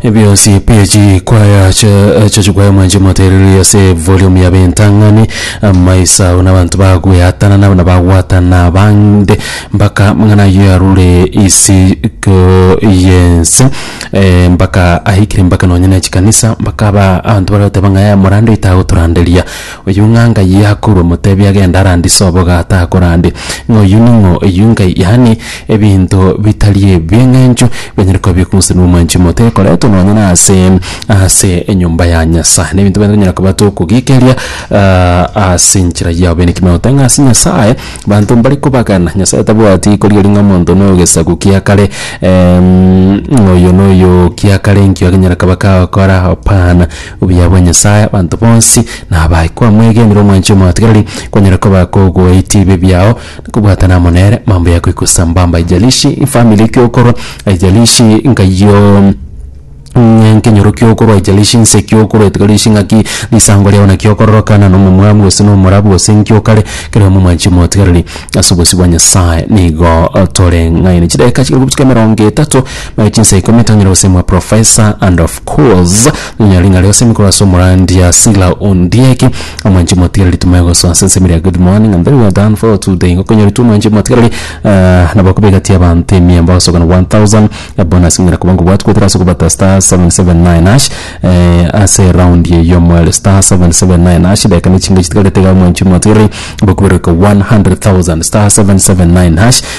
Ebionsi pi echikwaya cha- echo chikwaya mwanche motereri ase volume ya bentang'ani amaiso ao nabanto bagweatana nabo nabagwatana bande mpaka mang'ana ayio yarure isiko yense eh, mpaka ahikire mpaka nonye ne chikanisa mpaka aba abanto baragoteba ng'a eh, morande oito agotoranderia Oyio ng'a Ngai akorwa motebi agende arandise oboga atakorande, ng'a oyio ning'o oyio Ngai, yaani ebinto bitari ebi'eng'encho bianyare koba bi'okomosa n'omwanchi omote ekoretwe nonya nase ase enyomba ya Nyasae. Nebinto biane tonyara koba tokogiikeria ase enchera ya obeene ekiagera note ng'a ase Nyasae banto mbare kobagana. Nyasae tabwati korigereria ng'a omonto no gesaku kia kare ng'a oyio noyo kia kare enkio agenyara koba kagokora, hapana. Obuya bwa Nyasae abanto bonsi nabae. Kwamwegenire omwanchi omotigareri, kwanyara koba kogoetie ebibe biao na kobwatana amo nere mambo ya goika sambamba. Haijalishi family ki okorwa, haijalishi nkayio ng'a nkenyoro ki okorwa, haijalishi nse ki okorwa, haijalishi ng'aki risango riao naki okororokana na omomwamu gose na omorabu gose nki okare, kera obe omwanchi omotigareri ase obosio bwa Nyasae. Nigo tore ng'aini. Chidakika chikare gotuka emerongo etato. Naye chinsa ikomi etang'ire gose mwa Professor and of course nonya ring'ari gose mikoro ase omorandia Sila Ondieki omwanchi omotigereri tumaye gosoa ase ensemo eria good morning and very well done for today igo konyoritwe omwanchi omotigereri ah, nabo koba egati y'abanto emia mbagosokana 1000 bonus ng'ina koba ngobwati goetera ase kobata star 779 hash eh, ase round eye y'omoere star 779 hash edageka ne chingo chitigarete iga omwanchi omotigereri bokuberoka 100000 star 779 hash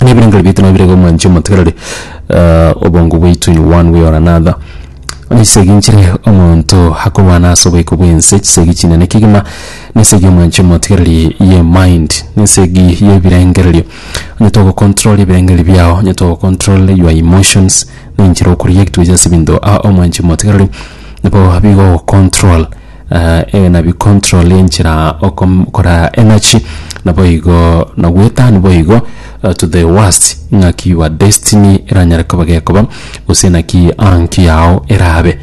na ebirengererio biaito nabirege na omwanchi omotegereri obongo bwaito in one way or another. Bono chisegi nchire omonto akorwana ase oboiko bwense, chisegi chinene kegima na esegi ya omwanchi omotegereri ye mind na esegi ya ebirengererio. Onye togocontrol ebirengererio biao, onye togocontrol your emotions na enchera okoreact gocha ase ebinto aa omwanchi omotegereri, nabo bigogocontrol. Eeh na bi control enchera okom kora energy naboigo na gwetani boigo to the worst ng'aki your destiny eranyare koba gekoba gose naki anki yao erabe.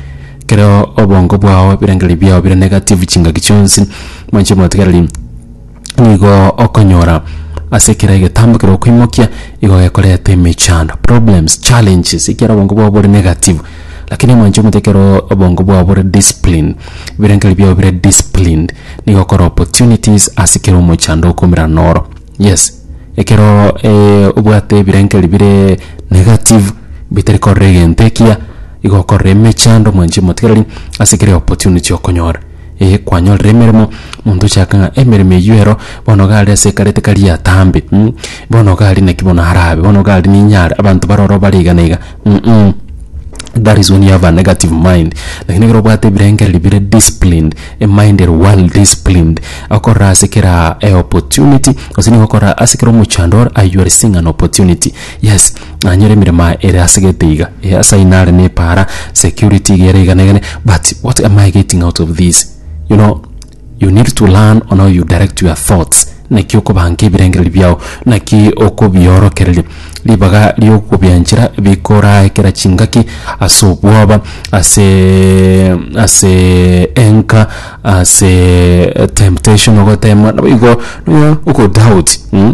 Keroo obongo bwao ebirengererio biao bire negative chingaki chionsi mwanche motigereri. nigo okonyora ase ekero egetambo kere okoimokia igo gekoreta emechando problems challenges ekiagera obongo bwabo bore negative lakini omwancho omote ekero obongo bwabo bore discipline ebirengererio biabo bire disciplined nigo okora opportunities ase kera omochando okoumera noro yes ekero obwate ebirengererio bire negative bitari korora egento ekiya igo okorora emechando mwancho emotigereri ase kera opportunity okonyora. Ee, kwanyorire emeremo, monto ochake ng'a emeremo eyio ero bono iga aria ase ekare tikari atambe, mm bono iga aria naki bono arabe, bono iga aria ninyare, abanto bare ororo bare iga na iga, mm that is when you have a negative mind, lakini ekero obwate ebirengereri bire disciplined, emind ere well disciplined, okorora ase kera eopportunity, gose nigo okorora ase kera omochando ore, you are seeing an opportunity, yes. nanyore emeremo aye ere ase gete iga eh ase ayio nare ne epaara security iga ere igana igane but what am I getting out of this you know you need to learn on how you direct your thoughts naki okobanga ebirengereri biao naki okobiorokereria ribaga riokobianchera bikorae kera chingaki ase obwoba aseeee asee anger asee temptation ogoteemwa naboigo nonya ogo doubt mh.